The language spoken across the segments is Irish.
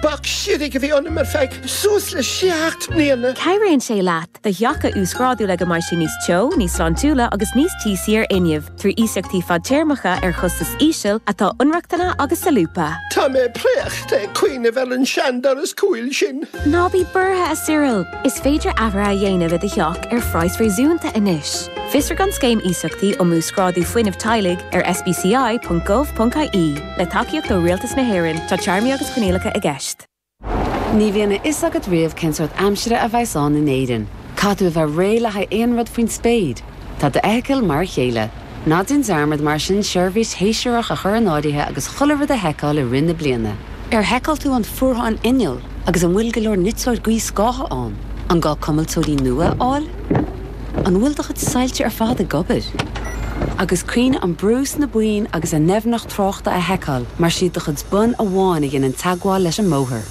Bac shimhigh a bhí ionam ar feadh suas le seacht mbliana. Cabhraíonn sé leat do theach a uasghrádú le go mbeidh sé níos teo, níos sláintiúla agus níos tíosaí ar fhuinneamh trí iasachtaí fadtéarmacha ar chostas íseal atá inrochtana agus solúbtha. Tá mé préachta ag cuimhneamh ar an seandoras cúil sin. Ná bí buartha, a Cyril! Is féidir athruithe a dhéanamh i do theach ar phraghas réasúnta anois. Fiosraigh an Scéim Iasachtaí um Uasghrádú Fuinnimh Teaghlaigh ar sbci.gov.ie. Le tacaíocht ó Rialtas na hÉireann, tá téarmaí agus coinníollacha i gceist. Ní bhíonn a fhios agat riamh cén sórt aimsire a bheas ann in Éirinn. Caithfidh tú a bheith réidh le haghaidh aon rud faoin spéir. Tá d'fheithicil mar a chéile. Ná déan dearmad mar sin seirbhís shéasúrach a chur in áirithe agus chuile rud a sheiceáil i rith na bliana. Ar sheiceáil tú an fuarthán innill? Agus an bhfuil go leor niteoir gaothscátha ann? An gá cuimilteoirí nua a fháil? An bhfuil do chuid soilse ar fad ag obair? Agus cuimhnigh an brú sna boinn agus an doimhneacht tráchta a sheiceáil mar is iad do chuid bonn amháin a dhéanann teagmháil leis an mbóthar.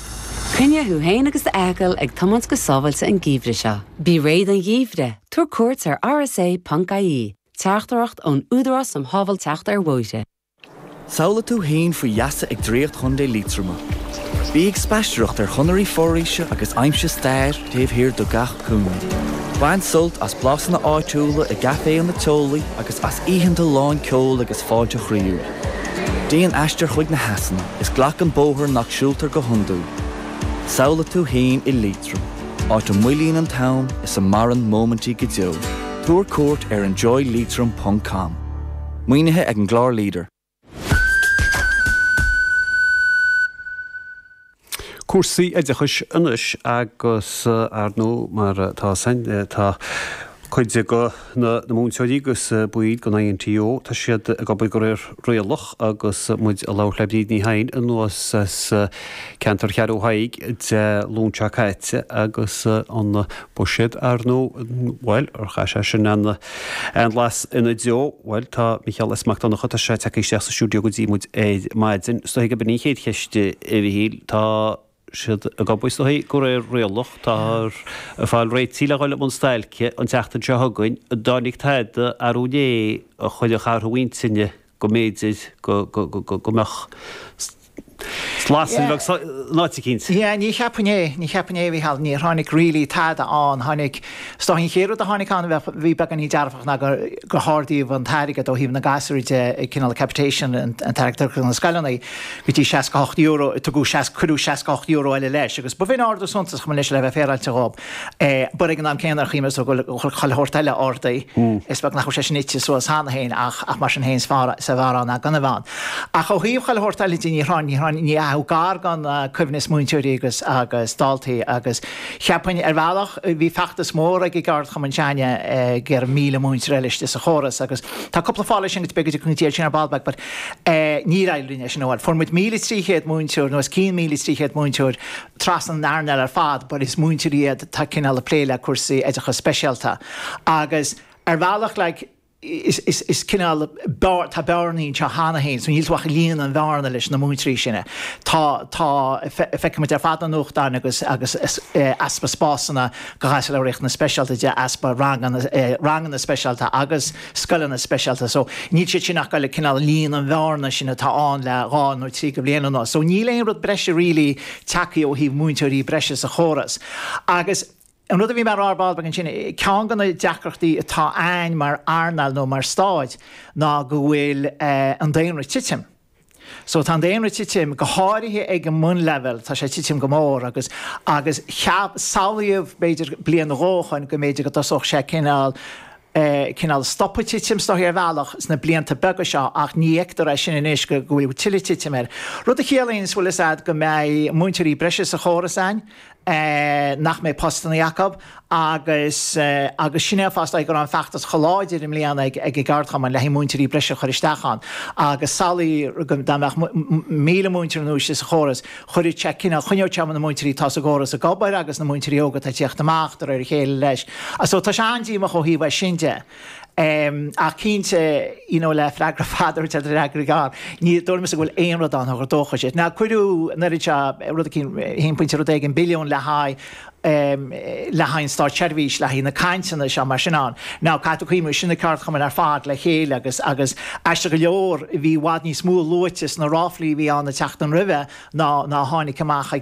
Coinnigh thú féin agus d'fheithicil ag tiomáint go sábháilte an geimhreadh seo. Bí réidh don gheimhreadh, tabhair cuairt ar rsa.ie, Teachtaireacht ón Údarás um Shábháilteacht ar Bhóithre. Samhlaigh tú fhéin faoi gheasa ag draíocht Chontae Liatroma. Bí ag spaistearacht ar chonairí foraoise agus aimsigh stair taobh thiar de gach cúinne. Bain sult as blasanna áitiúla i gcaiféanna teolaí agus as oícheanta lán ceoil agus fáilte chroíúil. Déan aistear chuig na heasanna is glac an bóthar nach siúltar go hiondúil. Samhlaigh tú fhéin i Liatroim, áit a moillíonn an t-am is a maireann móimintí go deo. Tabhair cuairt ar enjoyleitrim.com. Maoinithe ag an gclár leader. Cúrsaí oideachais anois agus ar ndú mar atá a fhios againn tá cuid de na múinteoirí agus baill den INTO tá siad ag obair de réir rialach agus muid ag labhairt le Bríd Ní Sheighin anuas as ceantar Cheathrú Thaidhg Dé Luain seo caite agus an Buiséad, ar ndóigh. Bhuel, chaith sé sin an solas ina dtreo. Bhuel, tá Mícheál S. Mac Donncha, tá sé tagtha isteach sa stiúideo go dtí muid ar maidin. Is dóigh gurb in í an chéad cheist, a Mhíchíl. Tá siad ag obair, is dóigh, de réir rialach. Táthar ag fáil réitithe le dhul i mbun stailce an tseachtain seo chugainn. An dtáinig tada, arú inné, chun an t-athrú intinne? go mb'fhéidir go mbeadh slat sa bheag san áit a cinnt. Yeah, ní cheapfainn é, ní cheapfainn é, a Mhíchíl. Níor tháinig really tada ann, tháinig, is dócha an chéad rud a tháinig ann a bhí beagáinín dearfach ná gur, gur hardaíodh an t-airgead ó thaobh na ngasúr de, cineál capitation, an t-airgead a tugtar do na scoileanna, go dtí €68, tugadh, cuireadh €68 eile leis agus ba bh'in ardú suntasach, in fairness, le bheith féaráilte dhó. But ag an am céanna, chímid go bhfuil chuile shórt eile ordaithe, is beag nach bhfuil sé sin ite suas cheana féin, ach mar sin féin, is fearr ann ná gan a bheith ann. Ach ó thaobh chuile shórt eile de, ní raibh gar gan cuimhniú ar mhúinteoirí agus daltaí agus cheapfainn, ar bhealach, bhí feachtas mór ag an gceardchumann s'againne ag iarraidh míle múinteoir eile istigh sa chóras agus tá cúpla fáth leis sin, agus b'fhéidir go bpléifidh muid sin ar ball beag but níor éirigh linn é sin a fháil. Fuair muid míle trí chéad múinteoir nó os cionn míle trí chéad múinteoir, trasna an earnáil ar fad but is múinteoirí iad atá cineál ag plé le cúrsaí oideachas speisialta agus ar bhealach like is is is cineál beár tá bearnaí anseo cheana féin so níl tú ach ag líonadh an bhearna leis na múinteoirí sin tá tá feicimid ar fad na nuachtáin agus agus easpa spásanna do pháistí le riachtanais speisialta agus easpa ranganna ranganna speisialta agus scoileanna speisialta so níl siad sin ach ag cineál líonadh an bhearna sin atá ann le dhá nó trí de bhlianta anuas so níl aon rud breise really tagtha ó thaobh múinteoirí breise sa chóras agus an rud a bhí mé rá ar ball beag ansin ceann de na deacrachtaí atá a'inn mar earnáil nó mar stáid ná go bhfuil an daonra ag titim. So tá an daonra ag titim, go háirithe ag an mbunleibhéal, tá sé ag titim go mór agus, agus cheap, samhlaíodh b'fhéidir bliain nó dhó ó shoin go mb'fhéidir go dtosódh sé cineál, cineál ag stopadh titim, is dóigh ar bhealach, sna blianta beaga seo ach ní fheictear é sin anois go, go bhfuil tuilleadh titim air. Rud a chiallaíonn, is bhfuil 'fhios a'd go mbeidh múinteoirí breise sa chóras a'inn, nach mbeidh postannaí acu agus agus sin é an fáth go raibh an feachtas chomh láidir i mbliana ag an gceardchumann le haghaidh múinteoirí breise a chur isteach ann agus samhlaigh dá mbeadh míle múinteoir nua istigh sa chóras chuirfeadh sé cineál, choinneodh sé na múinteoirí atá sa gcóras ag obair agus na múinteoirí óga atá ag tíocht amach de réir a chéile leis. So tá sé an-díomách ó thaobh sin de. Ach cinnte, you know le freagra fada a thabhairt ar fhreagra gearr, ní dóigh liomsa go bhfuil aon rud ann a thug dóchas dúinn. Now cuireadh an oiread seo, rud eicínt, one point rud éigin billiún le haghaidh ehm le haghaidh an státseirbhís, le haghaidh na cainteanna seo mar sin ann. Now caithfidh tú cuimhniú, sin na ceardchumainn ar fad le chéile agus, agus aisteach go leor bhí i bhfad níos mó luaite sna ráflaí a bhí ann an tseachtain roimhe ná, ná a tháinig amach ag,